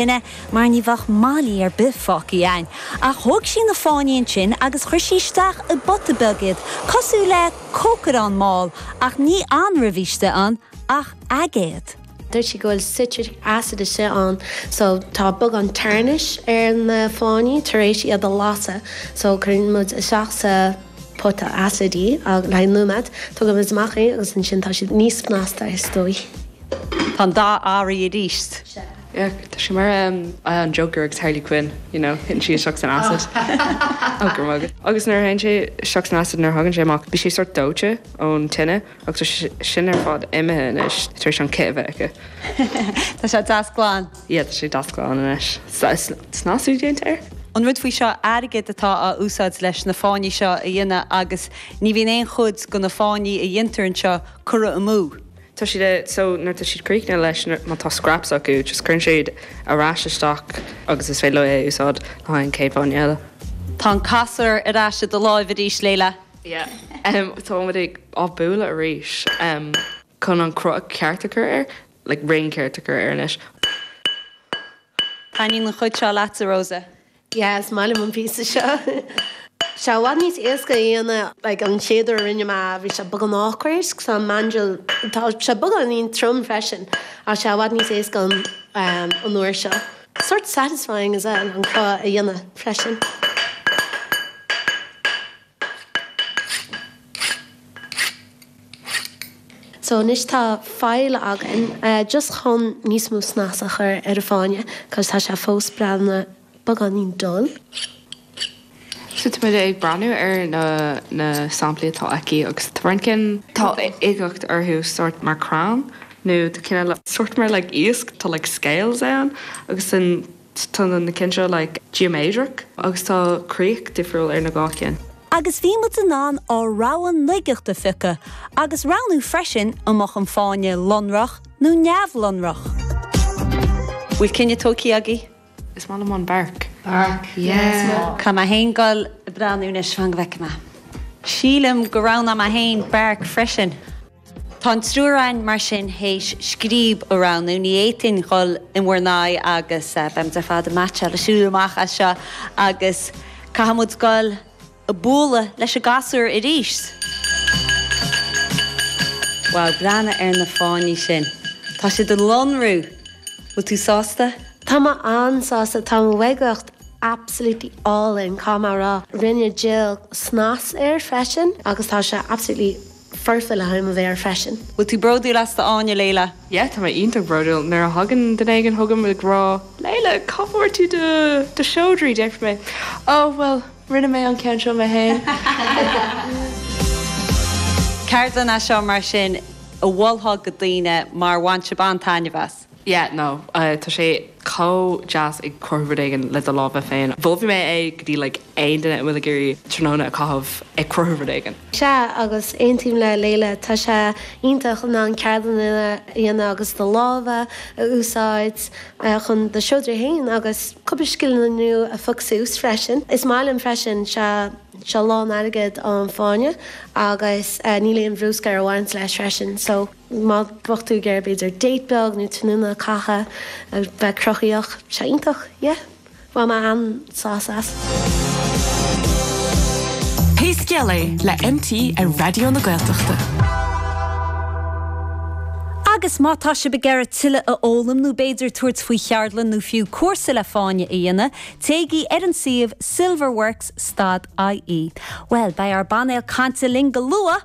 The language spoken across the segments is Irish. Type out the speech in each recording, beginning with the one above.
duine mar ní bheadh malaí ar bith fágthaí ann. Ach thóg sí na fáinní ansin agus chuir sí isteach i bpota beag iad, cosúil le cócaireán mall, ach ní anraith istigh ann ach aigéad. Dúirt sí go bhfuil citric acid istigh ann so tá beagán tarnish ar na fáinní tar éis iad a lasadh so cuireann muid isteach sa pota acid í agus leathnóiméad tógann muid amach í agus ansin tá siad níos snasta is dóigh. Tá an dóigh orthu arís. Ach tá sé mar an Joker agus Harley Quinn, you know, titeann sí isteach san acid. Ó, go maith. Agus nuair a théann sé isteach san acid, nuair a thagann sé amach, bíonn sé sórt dóite ón tine ach tá sin ar fad imithe anois tar éis an chith a bheith aici. Tá sé deas glan. Yeah, tá sé deas glan anois. Tá snasú déanta air. An rud faoi seo, airgead atá á úsáid leis na fáinní seo a dhéanamh agus ní bhíonn aon chuid de na fáinní a dhéantar anseo curtha amú. tá siad so nuair tá siad críochnaithe leis má tá scraps acu just cuireann siad ar ais isteach agus is féidir leo é a úsáid le haghaidh an chéad fháinne eile. Tá an casúr ar ais i do láimh arís Leila. Yeah táimid á bualadh arís em. chun an cruth ceart a chur air like roundáil cheart a chur air anois. Taitníonn an chuid seo leatsa Rosa. Yeah, is maith liom an píosa seo. Sea, i bhfad níos éasca a dhéanamh, like, an chéad uair a rinne mé, bhí sé beagán awkward, cos tá an mandrel, tá sé beagáinín trom freisin, ach sea, i bhfad níos éasca an, ehm, an uair seo. Sort satisfying as well an cruth a dhéanamh freisin. So anois tá file againn, just chun níos mó snas a chur ar an bhfáinne, cos tá sé fós, bhuel, ana beagáinín dull. So tá muid ag breathnú ar na na samplaí atá aici agus tá roinnt cinn tá uigeacht orthu sort mar crann nó tá cinn eile sort mar like iasc tá like scales ann agus an Tá na cinn seo geoiméadrach agus tá críoch difriúil ar na cinn. Agus bhí muid in ann ár rogha uigeacht a phiocadh agus roghnú freisin an mbeadh an fáinne lonrach nó neamhlonrach. Bhfuil cinneadh tógthaí agaibh? Is maith liom an bark. Bark, yeah. Caithfidh mé féin dul ag breathnú anois fan go bhfeicfidh mé. Sílim go roghnaigh mé féin bark freisin. Tá an triúr againn mar sin théis scríob a roghnú. Ní fhéadfainn dhul in bhur n-aghaidh agus beimid ar fad meaitseáil le siúl amach as seo agus caithfimid dul á bhualadh leis an gcasúr arís. Wow, breathnaigh ar na fáinní sin. Tá siad ag lonrú! Bhfuil tú sásta? Tá mé an-sásta. Tá an uigeacht absolutely álainn, caithfidh mé a rá. Rinne Jill snas air freisin agus tá sé absolutely. foirfe le ham a bheith air freisin. An bhfuil tú bródúil as d'fháinne, Leila? Yeah, tá mé iontach bródúil. Nuair a thagann duine éigin chugam ag rá, Leila, cá bhfuair tú do do seodra? déarfaidh mé, Oh, bhuel, rinne mé an ceann seo mé féin. Ceardlann as seo mar sin a mholfá go daoine mar bhain sib an-taitneamh as. yeah, no, tá sé chomh deas ag cruthú rud éigin le do lámha féin. Mholfainn é go dtí like aon duine a bhfuil ag iarraidh tráthnóna a chaitheamh ag cruthú rud éigin. Sea, agus aontaím le Leila, tá sé iontach in ann ceardlanna a dhéanamh agus do lámha a úsáid chun do seodra féin agus cúpla scileanna nua a fhoghlaim freisin. Is maith liom freisin, sea, seo lán airgead an fáinne agus níl aon bhrúscar a bhaint leis freisin, so. Má bhíonn tú ag iarraidh b'fhéidir date beag nó tráthnóna a chaitheamh a bheith cruthaíoch, tá sé iontach, yeah. Bhain mé an-sásamh as. Pé scéal é, le MTR ar Raidió na Gaeltachta. Agus má tá sibh ag iarraidh tuilleadh a fhoghlaim nó b'fhéidir tabhairt faoi cheardlann nó fiú cúrsa le fáinne a dhéanamh, téigí ar an suíomh silverworks stad IE. Bhuel, beidh ár bpainéal cainte linn go luath!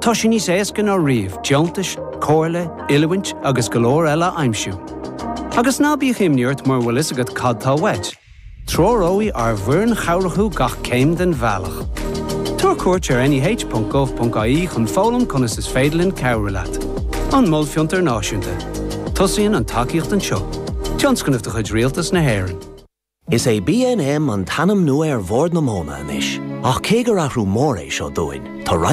Tá sé níos éasca ná riamh deontais, comhairle, oiliúint agus go leor eile a aimsiú. Agus ná bíodh imní ort mura bhfuil fhios agat cad tá uait, treoróidh ár bhfoireann chabhrach thú gach céim den bhealach. Tabhair cuairt ar neh.gov.ie chun foghlaim conas is féidir linn cabhrú leat. An Mol Fiontar Náisiúnta. Tosaíonn an tacaíocht anseo. Tionscnamh de chuid Rialtas na hÉireann. Is é BNM an t-ainm nua ar Bhord na Móna anois, ach cé gur athrú mór é seo dúinn, tá roinnt.